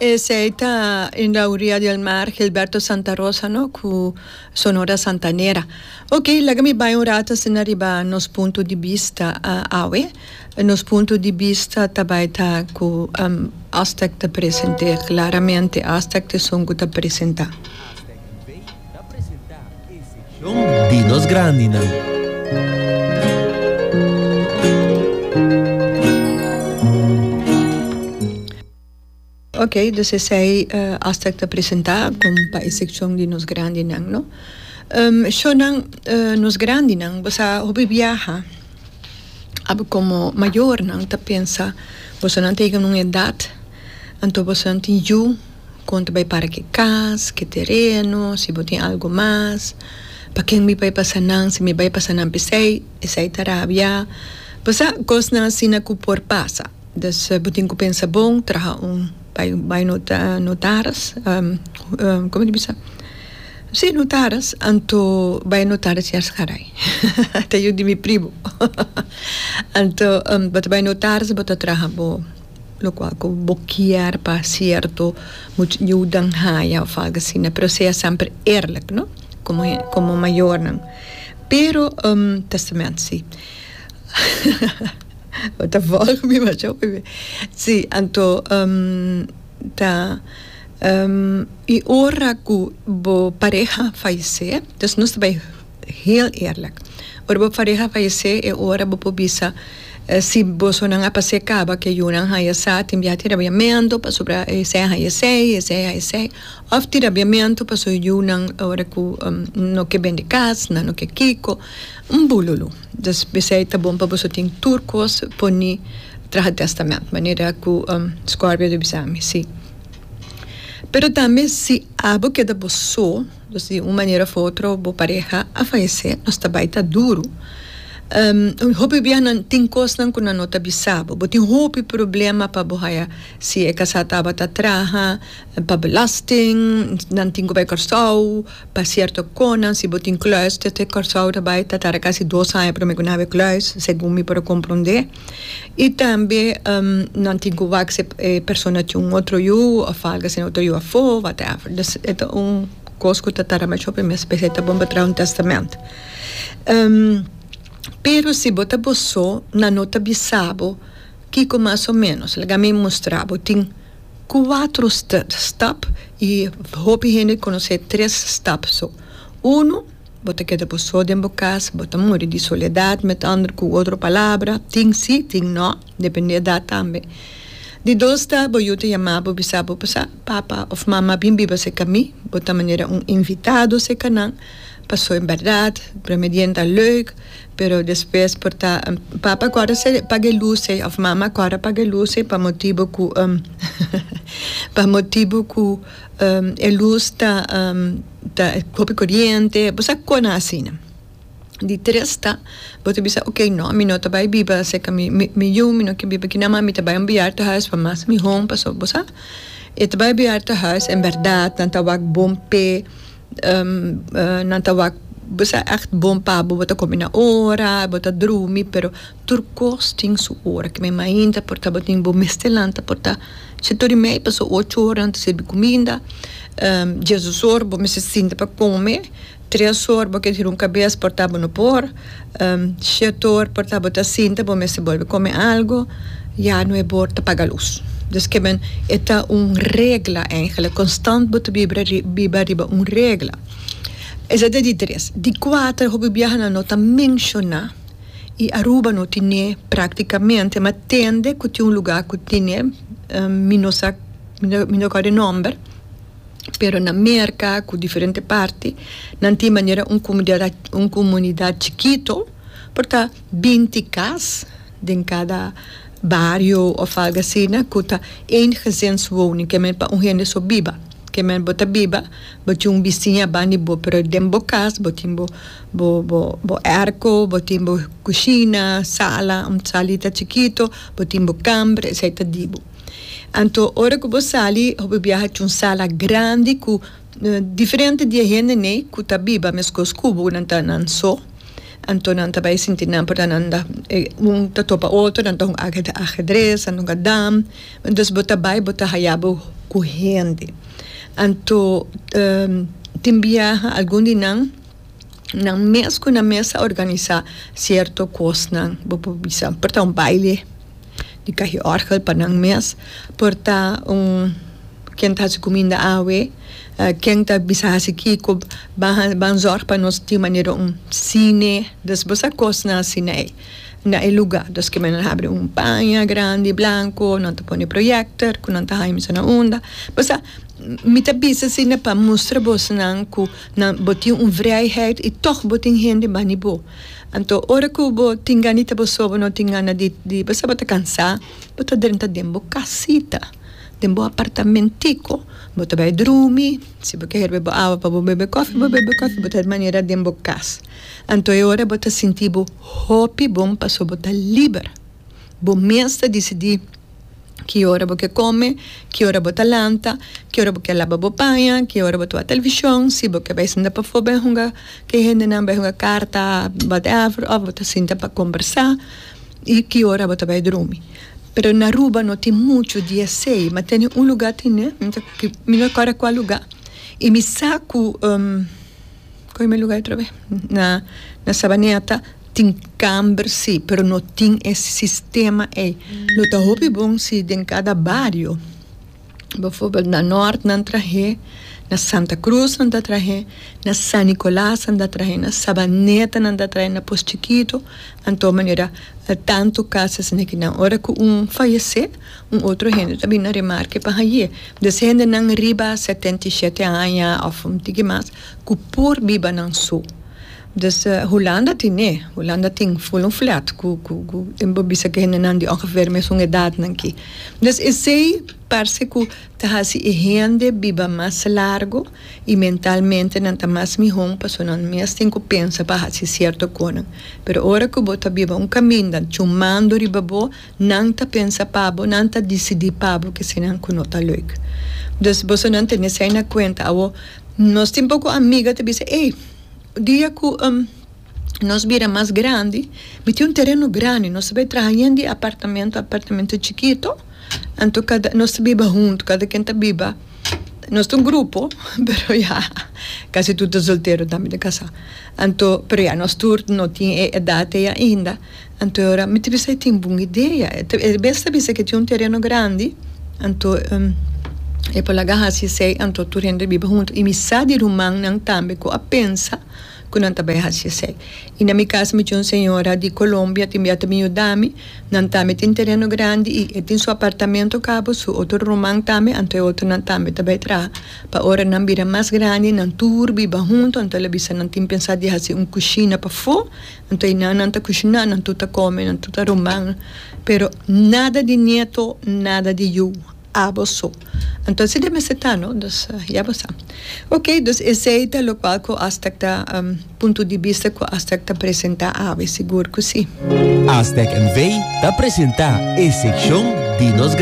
Esey ta en la oria di el mar Gilberto Santa Rosa no cu Sonora Santanera. Ok laga mi bay un rato asina riba nos punto di bista awe. Nos punto di bista ta bay ta cu Aztec ta presente claramente Aztec esun cu ta presenta. Shon di nos grandinan. Ok, dus esei hasta cu ta presenta con pa e seccion di nos grandinan, no? Shonnan, nos grandinan, bo sa hopi biaha, abo como mayornan ta pensa, bosonan ta yega na un edad, anto bosonan tin yu. kon ta bai para ki kas, ki tereno, si bo tin algu mas, pa ken mi bai pasa nan, si mi bai pasa nan p'esei, esei ta rabia, pasá kosnan asina ku por pasa, dus bo tin ku pensa bon, traha un bai bai nota notaris, kome ta bisa? si notaris, anto bai notaris yas garai ta yu di mi primo anto bo ta bai notaris bo ta traha bo. lokual ku bo kier pa sierto muchu yudan haya òf algu asina pero sea semper eerlik no komo hende komo mayornan pero testament si bo ta volg mi masha wifi si anto ta i ora ku bo pareha falesé nos ta bai. Heel eerlijk. Ora bo fareha fayesé e ora bo por bisa si bosonan a pasé kaba ku e yunan haya sa tin bia tira biamentu pasobra esei a haya sei, esei a haya sei, òf tira biamentu pasobra e yunan ora ku no ke bende kas nan no ke kiko, un bululu. Dus p'esei ta bon pa boso tin tur kos poni traha tèstamènt manera ku Scorbia a bisa mi si. Pero tambe si abo keda bo so. Pues di un manera of otro bo pareha a fayecé, nos ta bai ta duru. Hopi biahanan tin cosnan cu nan no ta bisa bo. Bo tin hopi problema pa bo haya, si e casá tabata traha pa belasting, nan tin cu bai Curaçao pa cierto conan, si bo tin cluis, te Curaçao ta bai ta tara casi dos aña prome cu nan a haber cluis, segun mi por a comprendé. Y tambe nan tin cu wak si e persona tin un otro yu of algo asina, otro yu afo, whatever. Dus e ta un cos cu ta taramba cho primer specia, e ta bon pa traha un testament. Pero si bo ta bo so, nan no ta bisa bo kico mas o menos, laga mi mustra bo. Tin cuatro step, stap, y hopi hende conoce e tres stap so. Uno. Bo ta keda bo so den bo cas, bo ta muri di soledad, met ander cu otro palabra, tin si, tin no, depende edad tambe. Di dos ta, bo yu ta yama bo bisa bo, Pasa, papa of mama bin biba seca mi, bo ta manera un invitado seca nan, paso en berdad, primer dien ta leuk, pero despues por ta, Papa cu ora se paga e luce, of Mama cu ora paga e luce, pa motibo cu, pa motibo cu e luz ta. ta hopi coriente bo sa cona asina di tres ta bo ta bisa ok no mi no ta bay biba cerca mi mi yu mi no kier biba aki nan mi ta bay un biaharta huis pa mas mihon pasobra bo sa e ta bay biaharta huis en berdad nan ta wak bon pe nan ta wak bo sa echt bon pa bo bo ta comi na ora bo ta drumi pero Tur kos tin su ora. Kibé mainta por tabatin bo mester lanta por ta chatorimei paso ocho ora nan ta sirbi kuminda. Jesus or bo mester sinta pa kome. Tres or bo ke hira un kabes por ta bo no por. Shet or por ta bo ta sinta bo mester bolbe kome algo. Ya nuebe or ta paga lus. Des kiben e ta un regla eingele konstant bo ta biba biba riba un regla. Esei ta di tres. Di kuater hopi biahanan no ta menshoná. y Aruba no tine practicamente ma tende cu tin un lugar cu tine mi no sa mi no acorda e nomber pero na Merca cu diferente parti nan tin manera un comunidad un comunidad chikito por ta binti cas den cada bario of algo asina cu ta een gezinswoning ke men pa un hende so biba ke men bo ta biba bo tin un bisiña bandi bo pero den bo cas bo tin bo Bo bo bo erko, bo tin bo kushina, sala, un salita chikito, bo tin bo kamber, esei ta di bo. Anto ora ku bo sali hopi biaha cu un sala grandi ku diferente di e hende nei ku ta biba meskos ku bo, nan ta nan so, anto nan ta bai sinti nan por ta nan da un ta topa otro, nan ta hunga ajedres, nan ta hunga dam, entonces bo ta bai bo ta haya bo ku hende. Anto tin biaha algun di nan nan mes cu nan mes a organisa cierto cosnan. Bo por bisa por ta un baile di caji orgel pa nan mes, por ta un ken ta haci cuminda awe, ken ta bisa haci kico ban ban zorg pa nos tin manera un cine. Dus bo sa cosnan asi na e na e lugar. Dus kiba nan habri un paña grandi blanco, nan ta pone projector cu nan ta haña mi sa na unda. Bo sa mi ta bisa asina pa mustra boso nan cu. Nan, bo tin un vrijheid i tog bo tin hende bani bo. Anto ora ku bo tin gana di boso, bo no tin gana di di boso bo ta kansá, bo ta drenta den bo kasita, den bo apartamentiko, bo ta bai drumi, si bo ke herbe bo awa pa bo bebe kofi, bo bebe kofi, bo ta manera den bo kas. Anto e ora bo ta sinti bo hopi bon pasobra bo ta liber. Bo mes ta disidí ki ora bo ke kome, ki ora bo ta lanta, ki ora bo ke laba bo paña, ki ora bo ta wak televishon, si bo ke bai sinta pafó bai hunga ke hendenan, bai hunga karta, whatever, òf bo ta sinta pa kombersá i ki ora bo ta bai drumi. Pero na Aruba no tin muchu di esei, ma tene un lugá tin, mi no kòrda kua lugá i mi sa ku. Coge mi lugar otra vez. Na na Sabaneta tin camber si pero no tin e sistema ey. Lo ta hopi bon si den cada bario bijvoorbeeld na Noord nan trahe, na Santa Cruz nan ta trahe, na San Nicolas nan ta trahe, na Sabaneta nan ta trahe, na Poschikito anto manera tanto casas nekinan ora cu un fayece. Un otro hende ta bini a remarke pa haye des hendenan riba setenta i shete aña of un tiki mas cu por biba nan so. Des Hulanda tin e, Hulanda tin full un flat cu cu tin por bisa cu hendenan di ongeveer mesun edadnan ki. Des esey parse cu ta haci e hende biba mas largo y mentalmente nan ta mas mihon pasobra nan mes tin cu pensa pa haci cierto conan. Pero ora cu bo ta biba un caminda chumando riba bo Nan ta pensa pa bo, nan ta disidí pa bo kesinan ku no ta lèk. Dus bosonan tene esei na kuenta. Awor, nos tin poko amiga ta bisa, Ey, dia ku nos bira mas grandi, mi tin un tereno grandi, nos ta bai traha yen di apartamentu, apartamentu chikitu, anto kada nos ta biba huntu, kada ken ta biba, nos ta un grupo, pero ya kasi tur ta soltero tambe ta kasá. Anto, pero ya nos tur no tin e edat ei ainda. Anto ora mi ta bisa e tin bon idea. E bes ta bisa ke tin un tereno grandi, anto e por laga hasi esei, anto tur hende ta biba huntu i mi sa di rumannan tambe ku a pensa ku nan ta bai hasi esei. I na mi kas mi tin un señora di Colombia tin bia ta bin yuda mi, nan tambe tin tereno grandi i e tin su apartamento kaba, su otro ruman tambe, anto e otronan tambe ta bai traha. Pa ora nan bira mas grandi nan tur biba huntu, anto el a bisa nan tin pensa di hasi un kushina pafó. Nan ta hina, nan ta kushina, nan tur ta kome, nan tur ta rumba, pero nada di nieto, nada di yu, abo so. Anto asi ta mester ta no, dus ya bo sa. Ok, dus esei ta lokual ku Aztèk ta, punto di bista ku Aztèk ta presentá awe, sigur ku si. Aztèk NV. ta presentá e sekshon di nos.